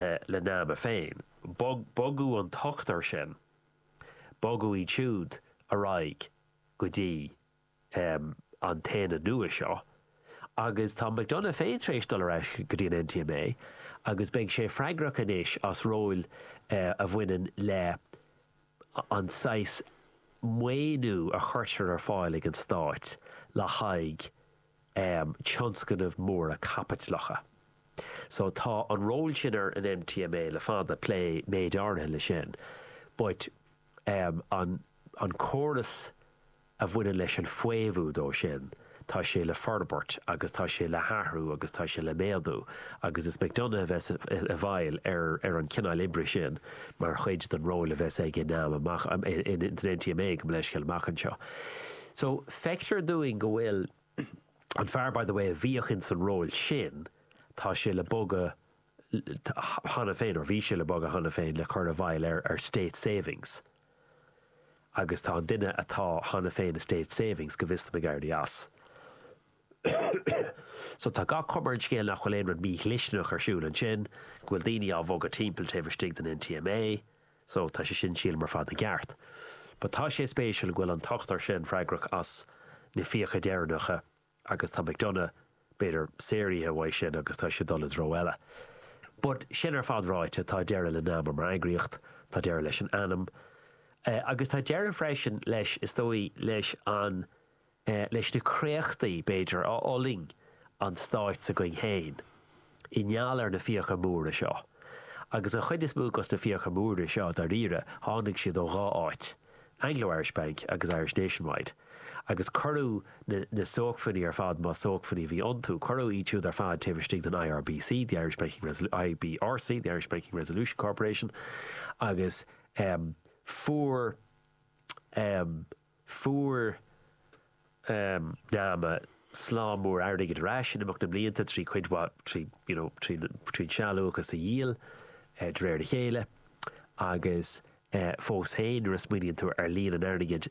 le nama féin. Bogadh an t-ochtar sin, bogadh iad siúd ar aghaidh go dtí an t-aonad nua seo, agus tá McDonagh féin tar éis dul ar ais go dtí an NTMA, agus beidh sé freagrach anois as ról a bhaineann le an saghas maoiniú a chuirtear ar fáil ag an Stáit le haghaidh. tionscnaimh mhóra caipitleacha. So tá an ról sin ar an NTMA le fada, plé méid áirithe leis sin, but an an córas a bhaineann leis an faomhadh dó sin, tá sé le forbairt agus tá sé le hathrú agus tá sé le méadú agus is McDonagh a bheas i bhfeighil ar an cineál oibre sin mar chuid den ról a bheas aige in am amach, san NTMA, gabh mo leithscéal, amach anseo. So, feictear dúinn go bhfuil an fear, by the way, a bhíodh ins an ról sin, tá sé le bogadh cheana féin, or bhí sé le bogadh cheana féin, le cur i bhfeighil ar, ar State Savings. Agus tá an duine atá cheana féin i State Savings, go bhfios domh, ag éirí as. So, tá gach cuma ar an scéal nach bhfuil aon rud mídhlisteanach ar siúl ansin, go bhfuil daoine á bhogadh timpeall taobh istigh den NTMA, So, tá sé sin sílim ar fad i gceart. But tá sé spéisiúil go bhfuil an t-ochtar sin freagrach as na fiacha deireanacha agus tá McDonagh, b'fhéidir, saortha uaidh sin agus tá sé ag dul i dtreo eile. But, sin ar fad ráite, tá deireadh le Nama mar eagraíocht, tá deireadh leis an ainm, eh, agus tá deireadh freisin leis, is dóigh, leis an leis na créachtaí, b'fhéidir, a fhulaing an stát s'againn féin i ngeall ar na fiacha móra seo. Agus an chuid is mó dos na fiacha móra seo, dáiríre, tháinig siad ó dhá áit, Anglo-Irish Bank agus Irish Nationwide. Agus cuireadh na na sócmhainní ar fad, más sócmhainní a bhí iontu, cuireadh iad siúd ar fad taobh istigh den IRBC, the Irish Banking Resolu, IBRC, the Irish Banking Resolution Corporation, agus em fuair em. Fuair Nama slám mór airgid ar ais in imeacht na mblianta trí cuid mhaith, trí, you know, trí, trí an sealúchas a dhíol de réir a chéile agus fós féin nuair a smaoiníonn tú ar líon an airgid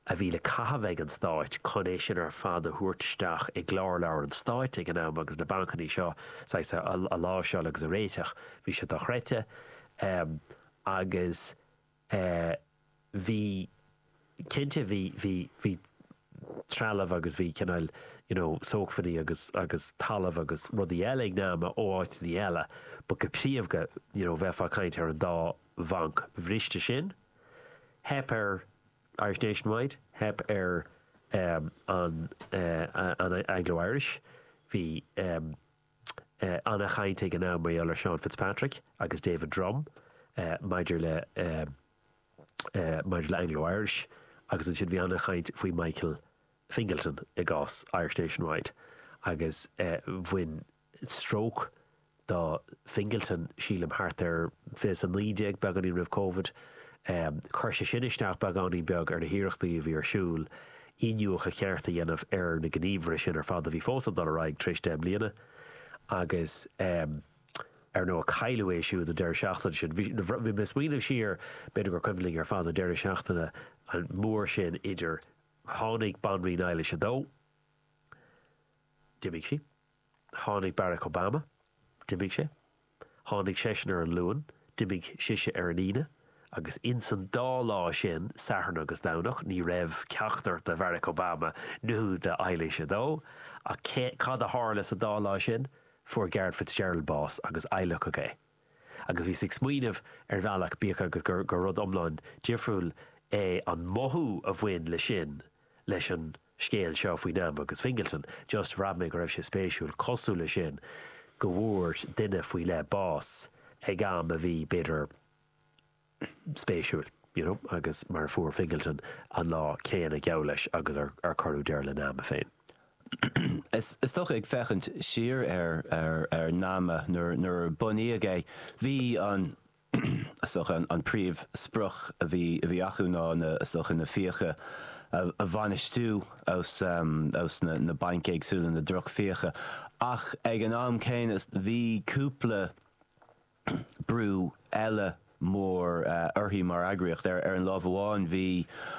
a bhí le caitheamh ag an Stát chun é sin ar fad a thabhairt isteach i gclárleabhair an Stáit ag an am agus na bancannaí seo saghas a, a láimhseáil agus a réiteach, bhí siad dochreidte. Agus. Eh bhí, cinnte bhí, bhí, bhí trealamh agus bhí cineál you know sócmhainní agus, agus talamh agus rudaí eile ag Nama ó áiteannaí eile but go príomhdha you know bheifeá ag caint ar an dá bhanc bhriste sin. Theip ar Irish Nationwide, theip ar em an eh an Anglo Irish, bhí em. Ana-chaint ag an am mar gheall ar Seán Fitzpatrick agus David Drumm maidir le maidir le Anglo Irish agus ansin bhí ana-chaint faoi Michael Fingleton i gcás Irish Nationwide agus bhain stróc do Fingleton sílim thart ar fiche naoi déag beagáinín roimh Covid. Chuir sé sin isteach beagáinín beag ar na hiarrachtaí a bhí ar siúl iniúchadh ceart a dhéanamh ar na gníomhartha sin ar fad a bhí fós ag dul ar aghaidh tar éis deich mbliana agus ar ndóigh cailleadh é siúd an deireadh seachtaine sin. Bhí mé ag smaoineamh siar, b'fhéidir gur cuimhin linn ar fad an deireadh seachtaine mór sin idir tháinig Banríon Eilís a Dó, d'imigh sí, Tháinig Barack Obama. D'imigh sé. Tháinig seisean ar an Luan. D'imigh sise ar an Aoine. Agus insan dá lá sin, Satharn agus Domhnach, ní raibh ceachtar de Bharack Obama nó de Eilís a Dó. Ach cad a tharla sa dá lá sin? Fuair Garret Fitzgerald bás agus adhlacadh é. Agus bhíos ag smaoineamh, ar bhealach, bíodh agus gur rud iomlán difriúil é an mothú a bhain le sin, leis an. scéal seo faoi NAMA agus Fingleton, just bhraith mé go raibh sé spéisiúil, cosúil le sin, go bhfuair duine faoi leith bás ag am a bhí, b'fhéidir, spéisiúil, you know, agus mar a fuair Fingleton an lá céanna, geall leis, agus ar, ar cuireadh deireadh le NAMA féin. Is, is dócha, ag féachaint siar ar, ar, ar NAMA nuair, nuair a bunaíodh é, bhí an, An príomh sprioc a bhí acu ná is dócha na fiacha a bhainistiú ós na bainc éagsúla, na droch fiacha, ach ag an am céanna bhí cúpla brú eile mór orthu mar eagraíocht. Ar an lámh amháin bhí